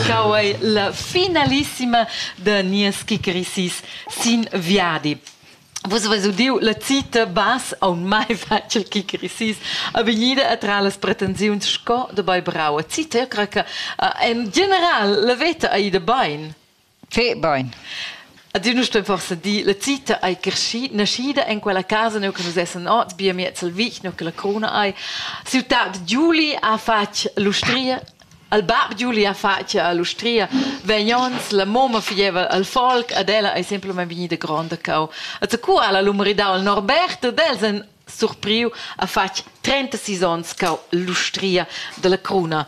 Chau ei la finalissima da nies kickerisis sin viadi. Vus avais udiu la cita bass aunc mai fatg il kickerisis a vegnida a tra las pretensiuns sco dabei brau. Cita cra che en general la veta ei da bein. Fe bain. Ad ün sto forsa dir, la zita ei cresci, naschida en quella casa neu che nus essen ot, bia miez al vic, neu che la cruna ei. Siu tat Giuli ha fatg l'ustria, al bab Giuli ha fatg l'ustria, vegnons, la moma fieva al folk, ad ella ei semplamain vegnida gronda cau. E co ha la lu maridau al Norbert, ed els en surpriu ha fatg 36 onns cau l'ustria dalla cruna.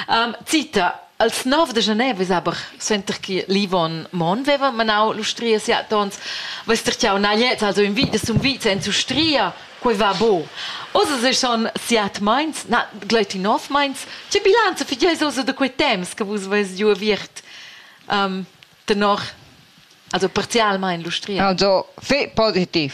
Um, cita, als 9 de genève es aber suenter che l'Yvonne Mon veva manau l'ustria siat ons, vess der jau na jetzt also im Wiede zum Wiede en Ustria, quei va bo. Oz es schon siat meins, na gleiti nov meins, che bilanza figieus oso de quei temps che vus vess giu aviert um, tenor, also parzialmein l'ustria. Also, fi positiv.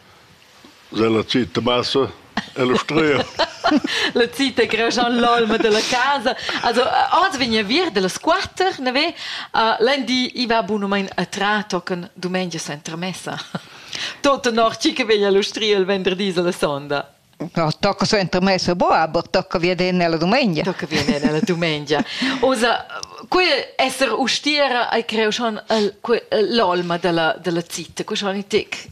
Sche la cita bassa e l'ustria. La cita greja l'olma della casa. Also oz vegna vir dellas quatter, ne ve? L'endi i va bunumein a tra tochen dumengia sentremessa. Tot nor chi che veglia l'ustria il venderdì alla sonda. No, tocca sentremessa bo, aber tocca viene alla domenica. Tocca viene alla domenica. Osa, qui esser ustiera ai creo schon l'olma della della cita, qui schon i tic.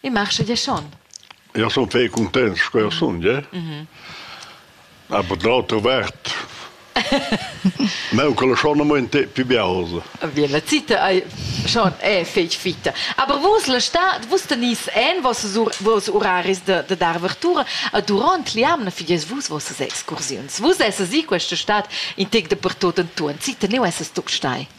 Il marchet è schon. Ja sun fei cuntents sco eu sun, je. Aber d'auter vart Meu quella schon mo in te più biausa. Wie la zita ei schon è fetg fitta. Aber vus la stad, vus tenis en vos vos uraris de de dar avertura a durant liamna fidies vus vos excursiuns. Vus esses i questa stad in tec de pertot en tu, en zita ne esses tu stai.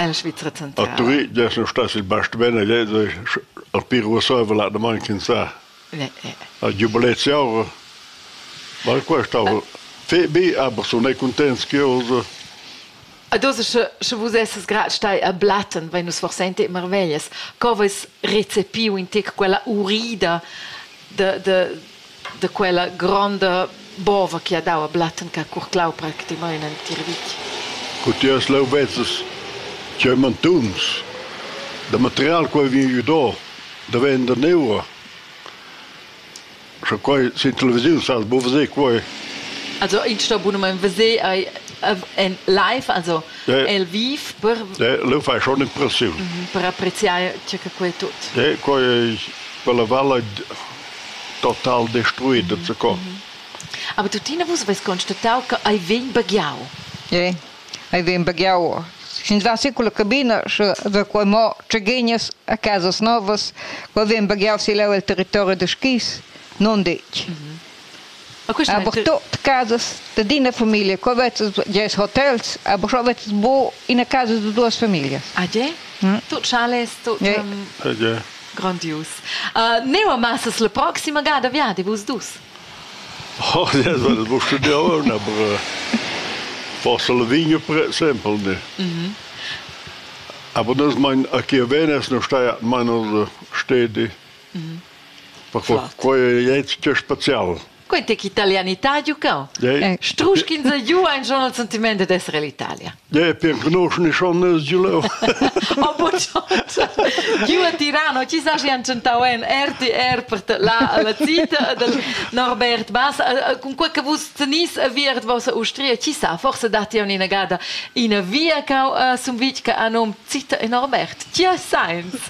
A Turitg dess nu stas il bastiment a Lezoi al pir uossaivel l'animant chinsà. A Giubilet Siaura. Ma qua stava fe bi, aber sun ei cuntents che osa. Ad osa sche, sche vus essas grad stai a Blatten, vein nus forsente marveglias. Co veis recepiu in tec quella urida de, de, da quella gronda bova che ha dau a Blatten che ha curclau practimain entir vitg. Cutias leu vezzas c'ei mantuns da material quei vegn do da vender neua. Sche quei sin televisiun sal, bu veser quei. Also ich sto bunamein veser ei en live, also ja. el viv per ja, leu fai schon impressiun. Mhm, per appreziare ciò che quei tut. Ja, quei per la val Total destruida sco. Aber tuttina vus aveis constatau che ei vegn baghiau. Ei, ei vegn baghiau. Sin la sicula cabina, sche da quei mo tscheghinas a casas novas, quei vegn baghiau si leu el territori da skis, non detg. Aber tot casas d'ina famiglia, qua vezzes ges hotels, aber schon vezzes bu in a casa de duas familias. Ah, je? Mm. Tot chales, tot Yeah. um, Ah, je. grandius. Uh, neu amassas la proxima gada viadi vus dus. Oh, das war das musst du dir auch aber äh, forse la vigna per exempel, ne. Mhm. Aber das mein, a Chiavenes noch steht meiner Städte Perquei quei ei tgei special. Quei tec italianità giucau. Yeah. Struschin se giu ein schon al sentiment ed essere l'Italia. Ja, per conoscen schon Giuleo. Oh, giu a Tirano, ci sa si han cantau en RTR per la la zita del Norbert Bass, con quei che vus tenis a viert vos Austria, ci sa forse dati un inagada in via cau Sumvitga a nom zita e Norbert. Ci ha science.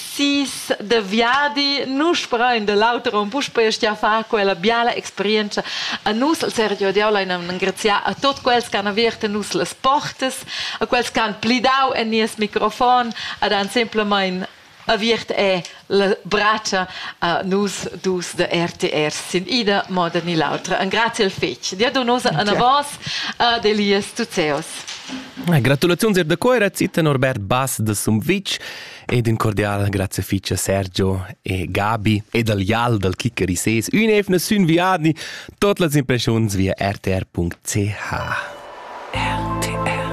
Sis de viadi, nu sperain de l'auter un puspei stia far quella biala experiencia a nus el Sergio Diao lein engraziar a tot quels che han aviert nus las portas, a quels che han plidau en nies microfon, ad han simplemein aviert è la braccia a nus dus de RTR sin ida moda ni l'autra. Grazie al fetg. Dia donosa a vos ad Elias Tuzeos. Gratulaziuns er da cuera zita Norbert Bass de Sumvitg ed in cordial grazie fice Sergio e Gabi ed al Jal dal Kicker ISES ün evna sün viadni tot las impressions via rtr.ch RTR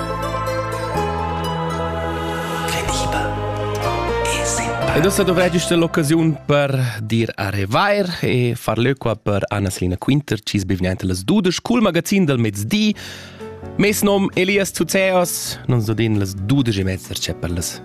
Ed ossa dovreggist l'occasiun per dir a revair e far leu qua per Anna-Selina Quinter, cis bivniaint las dudes, cul magazin del mezdi. Mes nom Elias Zuzeos, non so din las dudes e mezzer c'è per las